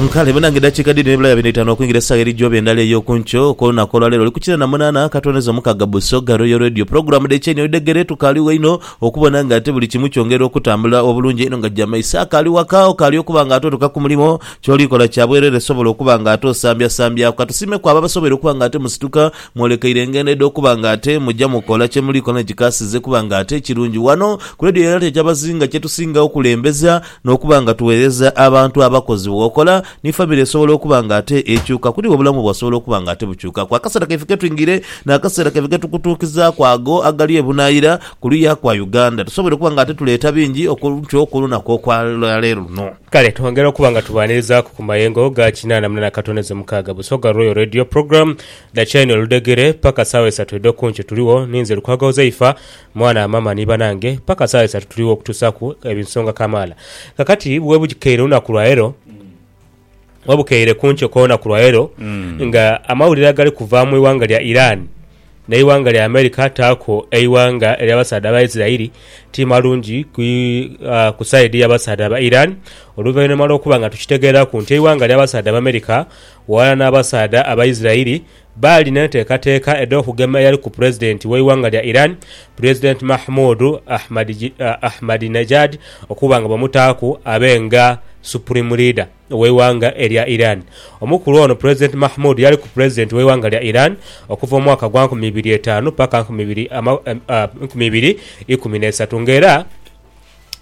Nkale banange dakiika dhiri ne bulaya bino itano okwingira esaawa eri gyobe endala eyoku nkyo okwo lunaku olwa leero olukukina na munana akatondeza omukaga Busoga Royal Radio pulogulamu dhe kyenyi oidhegere tukaligho inho okubona nga ate buli kimu kyongera okutambula obulungi einho nga jama iso akali waka okali okuba nga ate otuka kumulimo kyoli kola kyabwerere sobola okuba nga ate osambya sambyaku katusiime ku abo abasobweire okuba nga ate musituka Mwolekeire engendo edh'okuba nga ate muja mukola kye muli koona ekikaasize kuba nga ate ekirungi. Ghano ku leediyo ya Lata eky'abazinga kye tusinga okulembeza n'okuba nga tugheereza abantu abakozi. Bw'okola ni famire esobola okuba nga ate ekyuka kuli iwe obulamu bwo asobola okuba nga ate bukyukaku. Akaseera kaife ke twingire n'akaseera kaife ke tukutuukizaaku ago agali ebunaayira ku luya kwa Uganda. Tusoboire okuba nga ate tuleeta bingi okuntyo ku lunaku okwa leero luno. Kale twongera okuba nga tubaanirizaaku ku mayengo ga kinaana mu nana katono edh'omukaaga Busoga Royal Radio Program. Dhakyai no ludhegere paka sawa esatu edho kunkyo tuligho ninze Lukwago Uzaifa, mwana wa mama ni banange paka sawa esatu tuligho okutusaku ebinsonga kamala. Kakati bwebukeire olunaku lwalero, bwebukeire kunkyo kwo'lunaku lwalero nga amawulire agali kuva mwi wanga lya Iran nei wanga lya America taku ei wanga elya basaadha ba Israeli ti malungi ku side ya basaadha ba Iran oluvainhuma lwo kuba nga tukitegeraku nti eiwanga lya basaadha ba America Ghalala n'abasaadha Abaisirairi baali n'enteekateeka edh'okugema eyali ku Pulezidenti w'eighanga lya Iran, Pulezidenti Mahmoud Ahmadinejad okuba nga bamutaaku abe nga Supreme Leader w'eighanga erya Iran. Omukulu ono Pulezidenti Mahmoud yaliku Pulezidenti w'eighanga lya Iran okuva mu mwaka gwa nkumi ibiri etaanu paka nkumi ibiri ikumi n'eisatu nga era,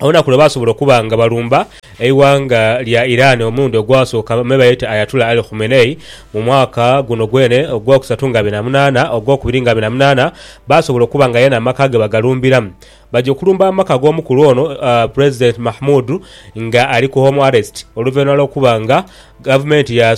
olunaku lwe baasobola okuba nga balumba eighanga lya Iran omulundi ogwasooka me bayeta Ayatullah Ali Khumenei mu mwaka guno gwene ogwokusatu nga abiri na munaana ogwokubiri nga abiri na munaana baasobola okuba nga yena amaka ge bagalumbiramu. Baja okulumba amaka g'omukulu ono Pulezidenti Mahmoud nga ali ku Home Arrest oluvainhuma lw'okuba nga gavumenti ya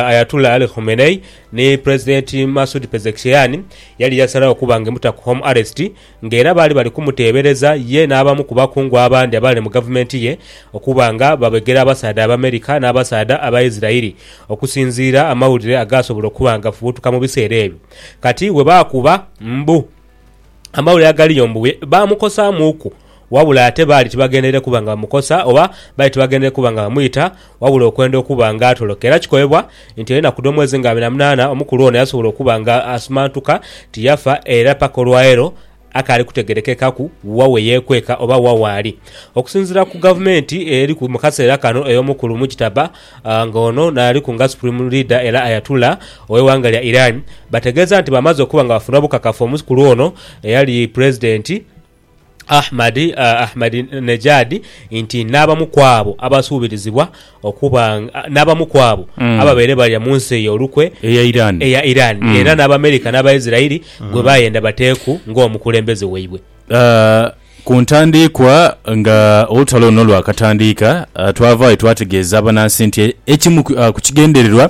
Ayatullah Ali Khumenei ni Pulezidenti Masoud Pezeshkian yali yasalagho okuba nga emuta ku Home Arrest nga era baali bali kumuteebereza ye n'abamu ku bakungu abandi abaali mu gavumenti ye okuba nga babegera abasaadha Abamerika n'abasaadha Abaisiraeli okusinziira amawulire agaasobola okuba nga gafubutuka mu biseera ebyo. Kati bwe baakuba mbu amawulire agaliyo mbu baamukosaamuuku, wabula ate baali tibagendeire kuba nga bamukosa oba baali tibagendeire kuba nga bamwita Wabula okwenda okuba nga atoloka era kikobebwa nti enaku dh'omwezi nga abiri na munaana omukulu ono yasobola okuba nga asumantuka tiyafa era paka olwaleero akaali kutegerekekaku wa weyekweka oba wa waali. Okusinzira ku gavumenti eriku mukaseera kano ey'omukulu Mujtaba nga ono naaliku nga supreme leader era Ayatullah ow'eighanga lya Iran bategeeza nti bamaze okuba nga bafuna obukakafu omukulu ono eyali pulezidenti Ahmadi, Ahmadinejad, nti n'abamu ku abo abasuubirizibwa okuba n'abamu ku abo ababaire balya mu nsi eyo olukwe eya Iran era n'Abamerika n'Abaisirairi gwe baayenda bateeku ng'omukulembeze waibwe. Ku ntandiikwa nga olutalo luno lwakatandiika, twavaayo twategeeza abanansi nti ekimu ku kigendererwa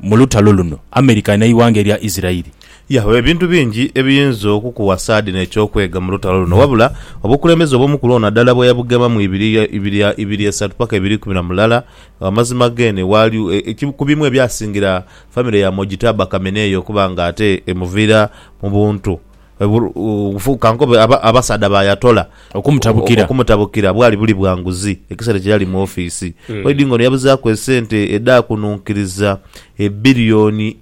Mu lutalo luno, America n'eighanga erya Isiraeli. Yahoo ebintu bingi ebiyinza okukuwasa dhino eky'okwega mu lutalo luno. Wabula, obukulembeze obw'omu kulwo nadala bwe yabugema mu ibiri ibiri ibiri esatu paka ibiri ikumi na mulala, amazima geene waali e ku bimu ebyasingira famire ya Mojitaba Khamenei okuba nga ate emuviira mu buntu. Ka nkobe abasaadha ba Ayatollah okumutabukira bwali buli bwa nguzi ekiseera kye yali mu ofiisi. Oidhi ng'ono yabuzaaku esente edhaakununkiriza ebilioni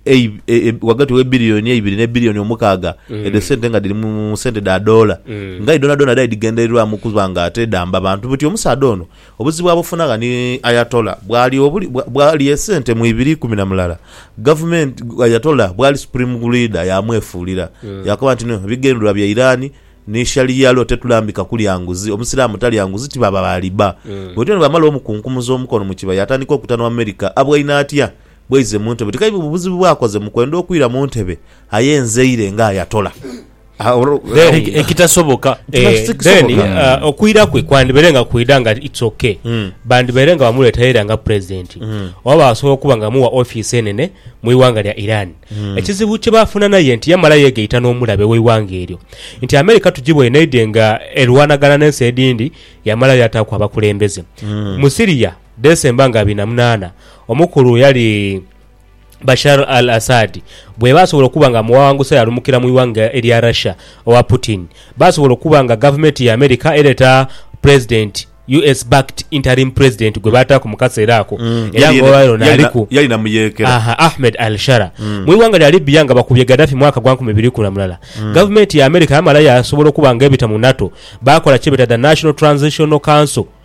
ghagati w'ebilioni eibiri ne bilioni omukaaga edho sente nga dhiri mu sente dha doola nga aye dhoonadhoona dhaali dhighendererwamu okuba nga ate dhamba bantu buti. Omusaadha ono Obuzibu abufunagha ni Ayatollah bwali obuli bwali esente mu ibiri ikumi na mulala. Gavumenti Ayatollah bwali supreme leader yaamwefuulira. Yaakoba nti no bigendererwa bya Iran ni Sharia law tetulambika kulya nguzi. Omusiraamu talya nguzi ti baba ba riba. Bwetyo ni bwamala omukunkumuza omukono mu kiba yaatandika okuta n'owa America abwaine atya bwaize mu ntebe. Ti kaiba bubuzibu bwakoze mu kwenda okwira mu ntebe aye nzeire nga Ayatollah. ekitasoboka eh, then uh, okwira kwe kwandibaire nga kwida nga its okay hmm. bandibaire nga bamuleetaira nga president hmm. oba basobola okuba nga muwa office enene mu iwanga lya iran hmm. ekizibu kye bafuna naye nti yamala yegaita n'omulabe w'iwanga eryo nti america tugibwa enaide nga erwanagana n'ensi edindi yamala yataaku abakulembeze mu siria desemba nga abiri na munaana omukulu yali Bashar al-Assad bweba asobola okuba nga mughawangusa yalumukira mu ighanga erya Russia owa Putin basobola okuba nga gavumeti ya America ereta Pulezidenti US backed interim president gwebataaku mu kaseera ako era nga olwaleero ono aliku Yali na muyeekera. Aha, Ahmed al-Shara. Mu ighanga lya Libya nga bakubye Gaddafi mwaka gwa nkumi ibiri ikumi na mulala, gavumenti ya America yamala yasobola okuba nga ebita mu NATO bakola kyebeta The National Transitional Council,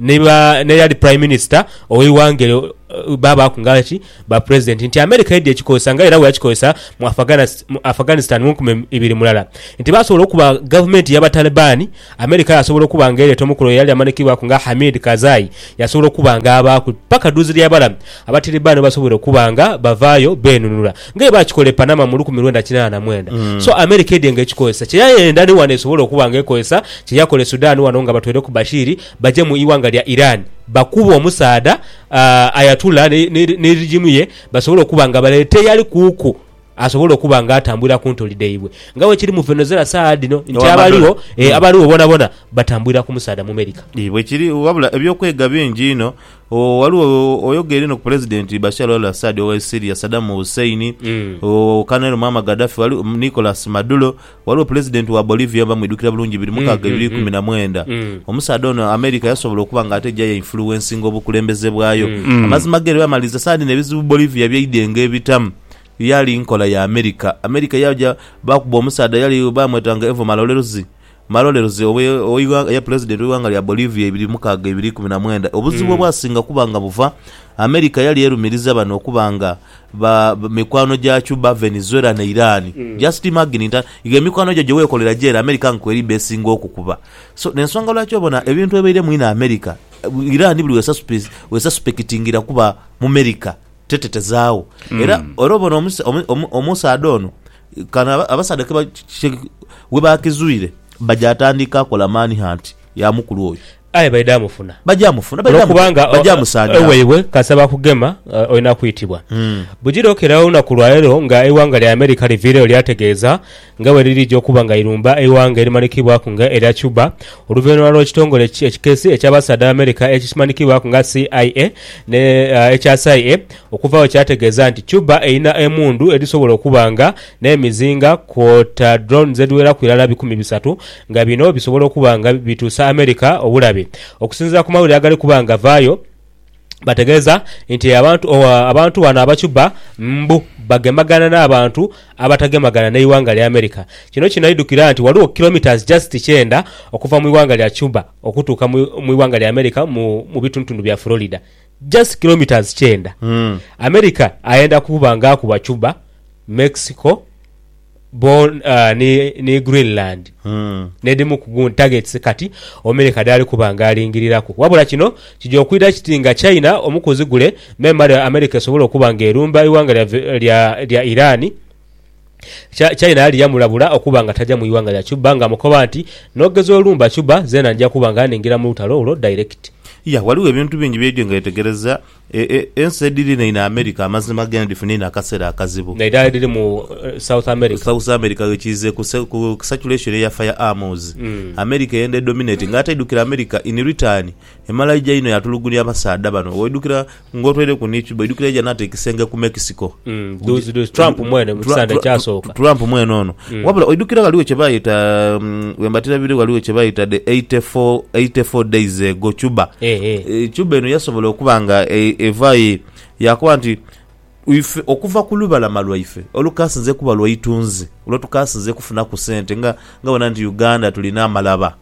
ni ba n'eyali Prime Minister ow'eighanga eryo baabaaku nga ki ba President nti America yaidha ekikozesa nga era bweyakikozesa mu Afghanistan mu nkumi ibiri mu lala nti baasobola okuba gavumenti y'Abatalibaani, America yaasobola okuba nga ereeta omukulu eyali amanhikibwaku nga Hamid Karzai yaasobola okuba nga abaaku paka duuzilyaibala Abatilibaani bwebasoboire okuba nga bavaayo beenunula. Nga bwe baakikola e Panama mu lukumi lwenda kinaana na mwenda. So America edhye nga ekikozesa. Kye yayenda ni wano esobola okuba nga ekozesa kye yakola e Sudan wano nga batweireku Bashir baje mu ighanga lya Iran bakube omusaadha Ayatullah ni regime ye basobole okuba nga baleeta eyali kuuku asobole okuba nga atambulira ku ntoli dhaibwe. Nga bwe kiri mu Venozela saagha dhino nti abaligho, eeh, abaligho boonabona batambulira ku musaadha Mumerika. Ii, bwe kiri. Wabula eby'okwega bingi inho Oo, ghaligho oyogeire no ku Pulezidenti Bashar al-Assad owe Syria, Saddam Hussein, oo, Colonel Muammar Gaddafi, ghali, Nicolas Maduro, ghaligho Pulezidenti wa Bolivia oba mwidhukira bulungi biri mukaaga ebiri ikumi na mwenda. Omusaadha ono America yasobola okuba nga ate eja yainfuluwensinga obukulembeze bwayo. Amazima ge lwe yamaliriza saadi n'ebizibu Bolivia by'eidenga ebitamu, yaali nkola ya America. America yaaja baakuba omusaadha yali baamwetanga Evo Malorelzi. Malolelze ogh'eighanga eya Pulezidenti w'eighanga lya Bolivia ibiri mukaaga ibiri ikumi na mwenda. Obuzibu obwasinga kuba nga buva, America yali erumiriza bano okuba nga ba mikwano gya Cuba, Venezuela ni Iran. Just imagine nti igo emikwano gyo gyewekolera gyere America nga kweriba esinga okukuba. So nensonga lwaki obona ebintu ebaire mu inho America, Iran buli wesasipekitingira kuba mu merica tetetezaagho. Era era obona omusaadha ono Kano abasaadha ke we baakizwire baja atandika kola mani hanti ya mukulu oyo. Aye baidha mufuna. Baja mufuna. Baja musanyawo. Olwo iwe kasita bakugema olina kwitibwa. Bujire okeera olunaku lwa leero nga eighanga lya America liviireyo lyategeeza nga bwe lirija okuba nga lirumba eighanga erimanhikibwaku nga erya Cuba oluvainhuma lw'ekitongole ekikesi eky'abasaadha ba America ekimanhikibwaku nga CIA ne ekya SIA Okuva agho kyategeeza nti Cuba erina emundu edhisobola okuba nga n'emizinga kwota drones edhiweraku irala bikumi bisatu nga bino bisobola okuba nga bituusa America obulabe. Okusinziira ku mawulire agali kuba nga gavaayo, bategeeza nti abantu bano aba Cuba mbu bagemagana n'abantu abatagemagana n'eighanga lya America. Kino kinaidhukira nti ghaligho kilometres just kyenda okuva mu ighanga lya Cuba okutuuka mu ighanga lya America mu bitundutundu bya Florida Just kilometres kyenda America ayenda kuba nga akuba Cuba, Mexico bon ni Greenland n'edhimu ku gun targets kati Omerika dhaali kuba nga alingiriraku. Wabula kino kija okwidha kiti nga China omukuzi gule memale Amerika esobole okuba nga erumba eighanga lya Iran. China yali yamulabula okuba nga taja mu ighanga lya Cuba nga amukoba nti, N'ogeza olumba Cuba, zeena nja kuba nga ningira mu lutalo olwo direct. Ya, ghaligho ebintu bingi bye Enjenge yetegereza. E, e, ensi edhiri neino America amazima geene dhifuna eino akaseera akazibu. Nairala edhiri mu South America. South America ghe kiize ku se, ku saturation eya fire arms. America eyenda edominatinga. Ate aidhukira America in return emala aija eino yaatulugunia abasaadha bano. Waidhukira. nga otwaireku ni Cuba, oidhukira yaja n'ata ekisenge ku Mexico. Mm, dhuuzi dhuuzi Trump mwene mu Tra- kisande Tra- ekyasooka. Tra- Trump mwene ono. Mm. Wabula oidhukira ghaligho kye baayita mm, bwe mbatira bire ghaligho kye baayita the 84 84 days ago Cuba. Eh, eh. Eh, Cuba eno yasobola okuba nga e- evaayo yakoba nti Ife okuva ku lubalama lwaife olukaasinze kuba lwa itunzi, lwe tukaasinze kufunaku sente nga nga bona nti Uganda tulina amalaba,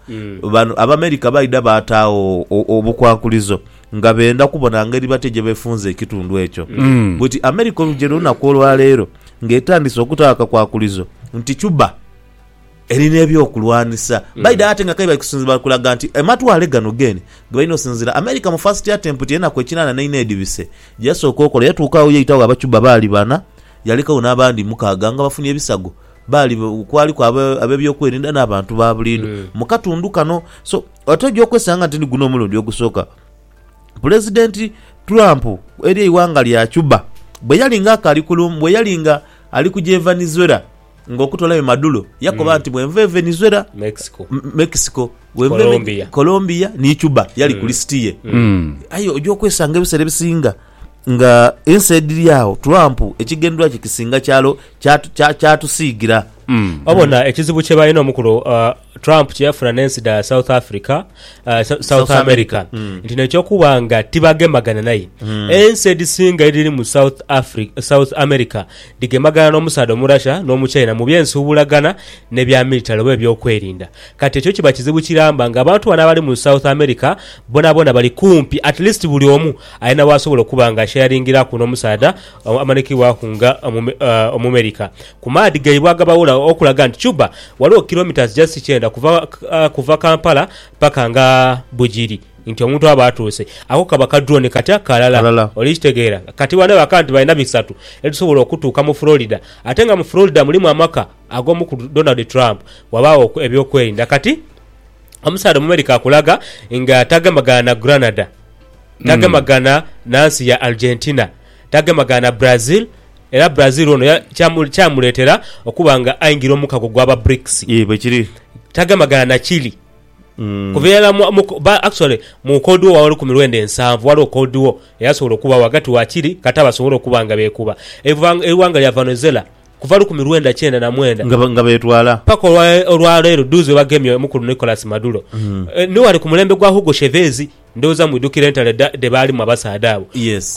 bano Abamerika baidha baataagho obukwakulizo nga benda kubona ngeri batya gye befunza ekitundu ekyo. Bw'eti Amerika olugya olunaku olwaleero ng'etandise okutaagho akakwakulizo nti Cuba, Eri n'ebyokulwanisa baidha ate nga kaibali kusinzira bali kulaga nti amatwale gano g'eni gebalina osinzira. America mu first attempt ey'enaku ekinana n'eina edhibise gyeyasooka okola yatuuka agho yaitagho Abacuba baali bana yalekagho n'abandi mukaaga nga bafunye ebisago baali kwaliku ab'ebyokwerinda n'abantu ba buliidho mu katundu kano so ate oja okwesanga nti ni guno omulundi ogusooka Pulezidenti Trump eri eighanga lya Cuba bweyali nga akali ku bweyali nga ali kuja e Venezuela. Nga okutolayo Maduro, yakoba nti bwenva e Venezuela, Mexico, M- Mexico, bwenva e Me- Colombia. Colombia ni Cuba yali ku lisiti ye. Aye oja okwesanga ebiseera ebisinga nga ensi edhiri agho Trump ekigendwa kye kisinga kyalo kyatu- kya- kyatusiigira. Wabona ekizibu kye balina omukulu uh, Trump kye yafuna n'ensi dha South Africa, uh, Sa- South South America America, mm. nti nekyokuba nga tibagemagana naye ensi edhisinga edhiri mu South Africa, South America dhigemagana n'omusaadha Omurasha n'Omuchina mu by'ensuubulagana ne bya militale oba ebyokwerinda. Kati ekyo kiba kizibu kiramba nga abantu bano abali mu South America bonabona bali kumpi at least buli omu alina w'asobola okuba nga asheyaringiraku n'omusaadha uh, amanikibwaku nga Omume- uh, Omumerika. ku maadhi gaibwe agabawula okulaga nti Cuba ghaligho kilometres just kyenda kuva kuva Kampala paka nga Bugiri nti omuntu aba atuuse. Ako kaba ka drone katya kalala. Kalala. Oli kitegeera? Kati bano bakaba nti balina bisatu ebisobola okutuuka mu Florida ate nga mu Florida mulimu amaka ag'omukulu Donald Trump wabaagho eby'okwerinda. Kati omusaadha Omumerika akulaga nga tagemagana na Granada, tagemagana na nsi ya Argentina, Tagemagaana Brazil era Brazil ono kyamuleetera okuba nga aingira omukago gwa ba Brics. Yee bwekiri. Tagemagaana na Chile kuva irala mu actually mu Cold War w'olukumi lwenda ensanvu waliwo Cold War eyasobola okubagho ghagati wa Chile kata basobole okuba nga beekuba. Eighanga lya Vanozela kuva lukumi lwenda kyenda na mwenda Nga betwala. paka olwaleero dhuuzi bwebagemye omukulu Nicolas Maduro ni wali ku mulembe gwa Hugo Chevez. Ndhoghoza mwidhukira entalo dhe baalimu abasaadha abo.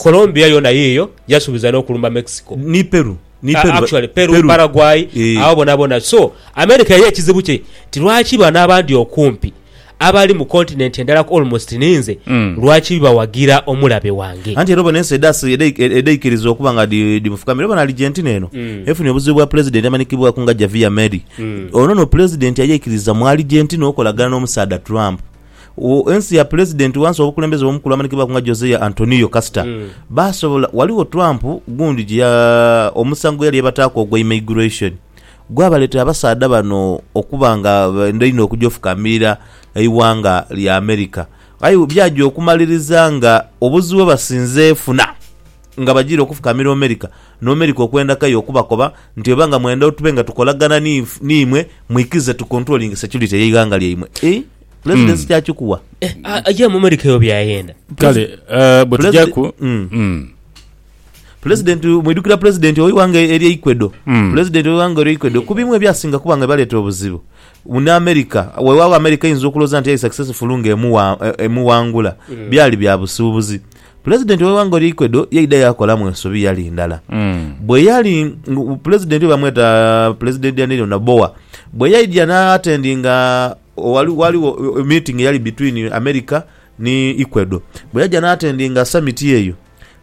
Colombia yoona yiiyo, yasuubiza n'okulumba Mexico. Ni Peru. Ni Peru. Actually, Peru, Paraguay, agho boonaboona. So, America ye ekizibu kye nti lwaki bano abandi okumpi abali mu continent endala ku almost ni nze, lwaki bawagira omulabe wange? Anti era obona ensi edhaikiriza okuba nga dhimufukamira. Obona Argentina eno efunye obuzibu bwa Pulezidenti amanhikibwaku nga Javier Milei. Ono no Pulezidenti ayeikiriza mu Argentina okolagana n'omusaadha Trump. ensi ya pulezidenti wansi obukulembeze bw'omukulu amanhikibwaku nga Josea Antonio Kasita Mm. baasobola waligho Trump gundi gye ya omusango gwe yali yebataaku ogwa immigration gwabaleetera abasaadha bano okuba nga benda inho okuja ofukamiira eighanga lya America aye byaja okumaliriza nga obuzibu bwebasinze funa nga bajiire okufukamiira America ni America okwenda kayo okubakoba nti oba nga mwenda tube nga tukolagana ni niimwe mwikize tukontulolinge securite y'eighanga lyaimwe. pulezidesi hmm. kyakikuwa eh, aja mu amerika eyo byayenda kale eh, bwetujaku hmm. hmm. pulezidenti mwidukira pulezidenti owiwanga eri eikwedo pulezidenti owiwanga eri eikwedo ku bimu ebyasinga kuba nga baleeta obuzibu mune amerika wewawo amerika eyinza okuloza nti yali successful nga e, emuwangula byali bya busuubuzi pulezidenti oweiwanga eri eikwedo yaida yakolamu ensobi yali ndala mm. bwe yali pulezidenti bamweta pulezidenti daniel nabowa bwe yaidya naatendinga Ghaligho meeting eyali between America ni Ecuador. Bwe yaja n'atendinga summit eyo,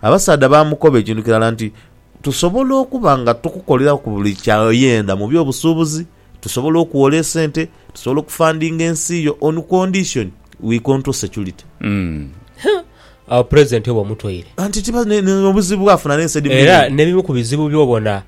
abasaadha baamukoba ekintu kirala nti, Tusobola okuba nga tukukoleraku buli ky'oyenda mu by'obusuubuzi, tusobola okuwola esente, tusobola okufandinga ensi yo on condition we control security. Agho Pulezidenti oba omutoire. Anti tiba n'obuzibu bwafuna n'ensi edhimu Era edhindi. n'ebimu ku bizibu by'obona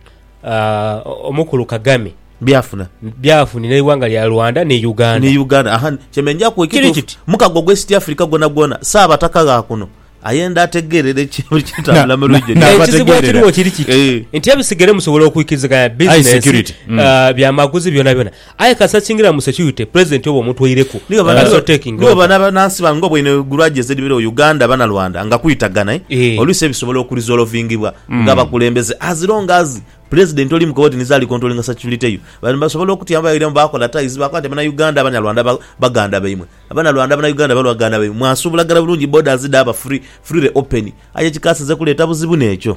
aah, Omukulu Kagame. Byafuna. Byafunira eighanga lya Rwanda ni Uganda. Ni Uganda. Aha, kyembe njaku Kiri ekituufu. kiti. Mukago gwa East Africa gwonagwona, Ssaabataka gha kuno ayenda ategeerere eki- buli kitambula mu region Na- eno. Ekizibu abategeerera. ekiriwo kiri kiti Eh. nti ebisigere musobola okwikiriziganya Aye business, security, mm. aah, byamaguzi byonabyona. Aye kasita kiingira mu security, president oba omutweireku Niwe bana That's not taking niwe over. bana banansi bange obweinho egulwa gyezedibera o Uganda bana Rwanda nga kwitagana eh Eeh. oluisi ebisobola oku resolvingibwa nga abakulembeze as long as President oli mukowedi nizo ali controllinga security yo bano basobola okutya bairamu bakola ties bakoba nti bana Uganda bana Rwanda ba- baganda baimwe abana Rwanda bana Uganda balwaganda baimwe mwasubulagana bulungi borders dhaba free freely open aye ekikasize kuleta buzibu nekyo.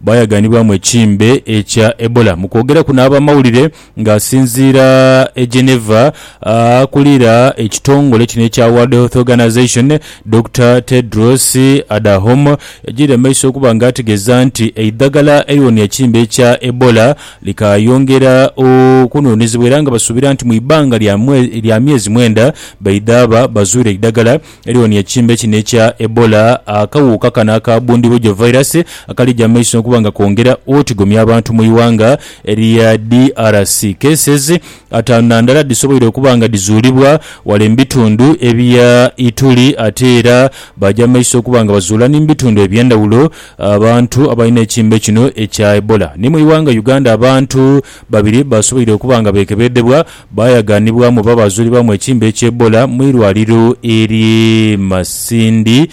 Baayaganibwamu ekimbe ekya Ebola. Mu kwogeraku n'abamawulire nga asinziira e Geneva, akulira ekitongole kino ekya World Health Organization, Dokita Tedros Adahom yagiire mu maiso okuba nga ategeeza nti eidhagala eriwonia ekimbe ekya Ebola likaayongera okunhunhizibwa era nga basuubira nti mu ibanga lya myezi mwenda baidhaaba bazuire eidhagala Eriwo ni ekimbe kino ekya Ebola, akawuuka kano aka bundibugyo virus akali ja maiso okuba nga kongera otigomya abantu mu ighanga erya DRC. Cases ataanu na ndala dhisoboire okuba nga dhizuulibwa wale mu bitundu ebya Ituri ate era baja maiso okuba nga bazuula ni mu bitundu ebyendhawulo abantu abalina ekimbe kino ekya Ebola. Ni mu ighanga Uganda abantu babiri basoboire okuba nga bekebedhebwa Baayaganibwamu oba baazulibwamu ekiimba eky'Ebola mu irwaliro ery'e Masindi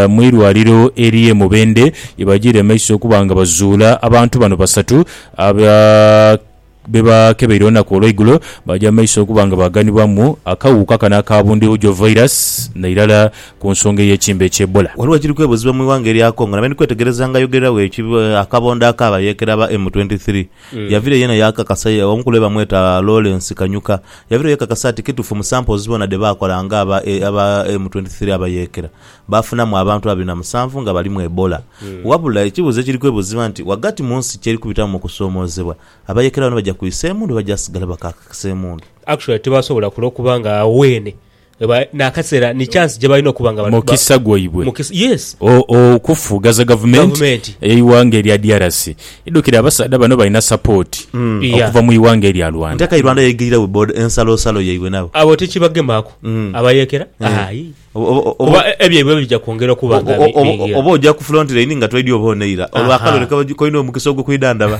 mu irwaliro ery'e Mubende ye bajiire mu maiso okuba nga bazuula abantu bano basatu aba be baakebeire olunaku olweigulo baaja mu maiso okuba nga baaganibwamu akawuuka kano aka Bundibugyo Virus nairala ku nsonga ey'ekiimba eky'Ebola. Ghaligho ekiri kwebuuzibwa mu ighanga erya Congo nabendhi kwetegereza nga ayogerera weekyo akabondo ak'abayeekera aba M23. Yavire yena yakakasa ya omukulu ye bamweta Lawrence Kanyuka yavire yekakasa ati kitufu mu samples bona dhe bakola nga aba aba M twenty three abayekera bafunamu abantu abiri na musanvu nga balimu Ebola. Wabula ekibuzo ekiri kwebuziba nti wagati munsi kyeri kubitamu mu kusomozebwa abayekera bano baja kwisa emundu oba baja sigala bakakakisa emundu. Actually tibasobola kulokuba nga wene Eba n'akaseera ni chance gye balina okuba nga ba- Mukisa gwaibwe. mukisa- yes O- o- Okufughaza gavumenti Gavumenti. eighanga erya DRC. Idhukire abasaadha bano balina support Yeah. okuva mu ighanga erya Rwanda. Nti akai Rwanda yaigirira we boda ensalosalo yaibwe nabo. abo tikibagemaku Mm. abayekera Eh. ayi Oba- oba- oba- kuba e- ebyaibwe bija kwongera okuba nga oba- bi- oba- bingi. oba oja ku front line nga twaidi oba oneira Aha. olwakalole koina omukisa ogwo kwidhandaba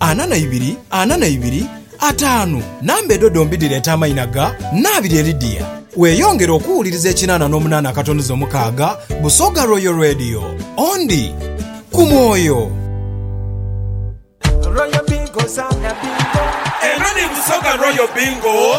Ana na ibiri, ana na ibiri, ataanu. Namba edho dhombi dhireeta amaina ga Nnaabirye Lydia. Weeyongere okuwuliriza ekinaana n'omunaana akatonoze omukaaga, Busoga Royal Radio. Ondi ku mwoyo. Eno ni Busoga Royal Bingo.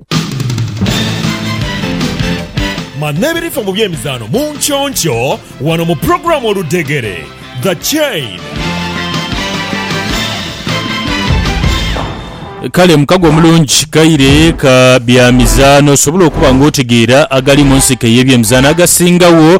Ma n'ebirifa mu by'emizaano mu nkyonkyio wano mu pulogulaamu Oludhegere, The Chain. Kale mukago omulungi kaire ka bya mizaano, osobola okuba nga otegeera agali mu nsiko ey'ebyemizaano agasingawo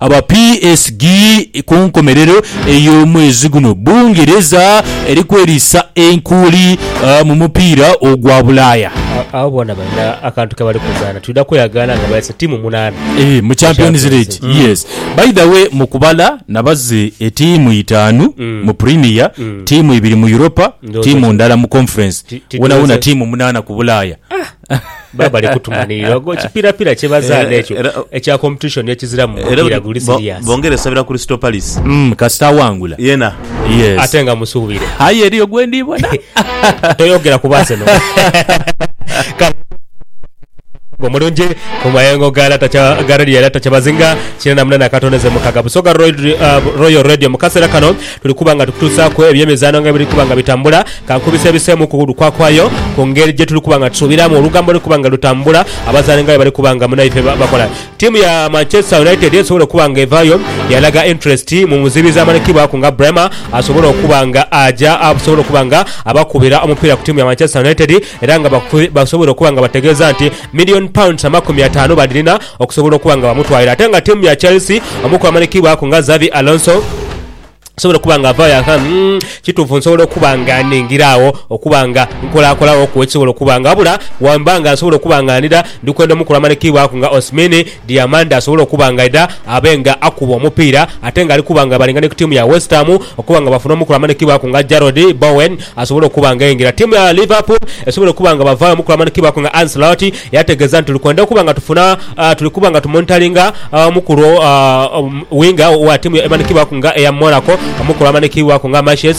Aba PSG ku nkomerero ey'omwezi guno Bungereza eri kweriisa enkuuli mu mupiira ogwa Bulaaya. Abo boona balina akantu ke bali kuzaana. Twidha kweyagaana nga baise tiimu munaana mu Champions League. By the way, mu kubala nabaze etiimu itaanu mu Premier, tiimu ibiri mu Europa, tiimu ndala mu Conference. Wonawona tiimu munaana ku Bulaaya. Baba bali kutumanhirira ogwo kipirapira kye bazaana ekyo Eh, era- ekya competition ekizira mu Era mupiira guli bo- serious. bongere sabira Crystal Palace Mm, kasita awangula. yena Yes. Ate nga musuubire. Aye eriyo gwe ndibona. Toyogera ku Arsenal. Kale, omulungi mu mayengo ga lata kya ga radio ya lata kyabazinga kina namuna nakatondeze mukaga busoga Roy- uh, royal radio mu kaseera kano Tuli kuba nga tukutuusaaku eby'emizaano nga bwe biri kuba nga bitambula, ka nkubise ebiseemu ku lukwakwayo ku ngeri gye tuli kuba nga tusuubiramu olugambo oluli kuba nga lutambula, abazaani nga bwe bali kuba nga munaife bakola. Ttiimu ya Manchester United esobole okuba nga evaayo yaalaga interest mu muzibizi amanhikibwaku nga Bremer asobole okuba nga aja asobole okuba nga abakubira omupiira ku ttiimu ya Manchester United era nga basobwire okuba nga bategeeza nti million pounds amakumi ataanu badhirina okusobola okuba nga bamutwalira ate nga tiimu ya Chelsea omu ku bamanhikibwaku nga Xabi Alonso asobola okuba nga avaayo ati umm kituufu nsobola okuba nga nningira agho okuba nga nkolakolaghoku ekisobola okuba nga wabula bwemba nga nsobola okuba nga ndidha ndi kwenda omu ku bamanhikibwaku nga Osmini Diamanda asobole okuba nga aidha abe nga akuba omupiira ate nga ali kuba nga abalinga ni ku tiimu ya West Ham okuba nga bafuna omu ku bamanhikibwaku nga Jarrod Bowen asobole okuba nga ayingira tiimu ya Liverpool esobole okuba nga bavaayo omu ku bamanhikibwaku nga Ancelotti Yategeeza nti, Kwenda okuba nga tufuna, tuli kuba nga tumonitaringa omukulu winga owa tiimu emanhikiibwaku nga eya Monaco, omukulu amanhikiibwaku nga Maciej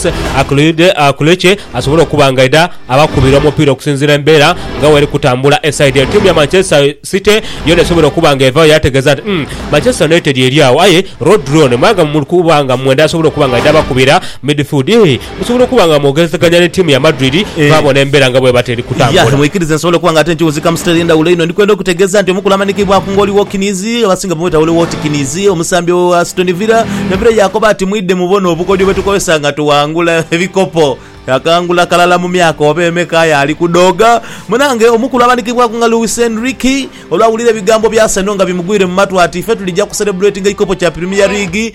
Akullic asobole okuba nga aidha abakubira omupiira okusinziira embeera nga bweri kutambula e saidi eno. Tiimu ya Manchester City yoona esobole okuba nga evaayo yategeeza nti, Umm, Manchester United eri agho aye Rodri ono mwanga muli kuba nga mwendha asobole okuba nga aidha abakubira midfield. Musobola okuba nga mwogerezeganya ni tiimu ya Madrid mwabona embeera nga bweba teri kutambula. Yah, mwikirize nsobola okuba nga ate nkiwunzika mu sitayiro endhawulo inho. Ndikwenda okutegeeza nti omukulu amanhikibwaku ng'oli Watkins, abasinga bamweta Ollie Watkins, omusambi owa Aston Villa, me Villa yaakoba ati, Mwidhe mubone obukodyo bwe tukozesa nga tuwangula ebikopo. Yakangula kalala mu myaka oba emeka aye ali kudhooga. Munange omukulu amanhikibwaku nga Luis Enrique olwawulira ebigambo bya Arsenal nga bimugwire mu matu ati, Ife tulija kuserebuletinga ekikopo kya Premier League.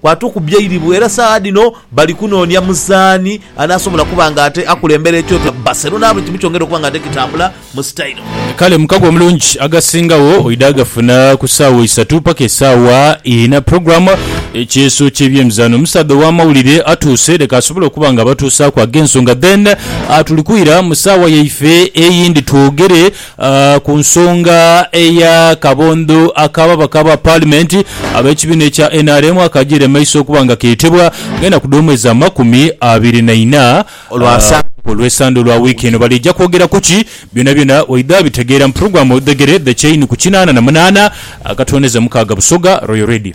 Kwatukubbya eiribu era saagha dhino bali kunoonia muzaani anaasobola kuba nga ate akulembera ekyoto kya Barcelona buli kimu kyongere okuba nga ate kitambula mu sitayiro. Kale mukago omulungi agasingagho oidha agafuna ku saawa isatu paka esaawa ina. Program Ekyeeso ky'ebyemizaano omusaadha ow'amawulire atuuse leka asobole okuba nga abatuusaaku ag'ensonga then tuli kwira mu saawa yaife eyindi twogere A Ku nsonga eya kabondho ak'ababaka ba paalimenti ab'ekibiina ekya nrm akagiire mu maiso okuba nga keetebwa nga enaku dh'omwezi amakumi abiri na ina olwa Olwesande olwa wiiki eno baliija kwogera ku ki? Byonabyona waidha abitegeera mu pulogulaamu Oludhegere The Chain ku kinaana na munaana akatwoneza mukaaga Busoga Royal Radio.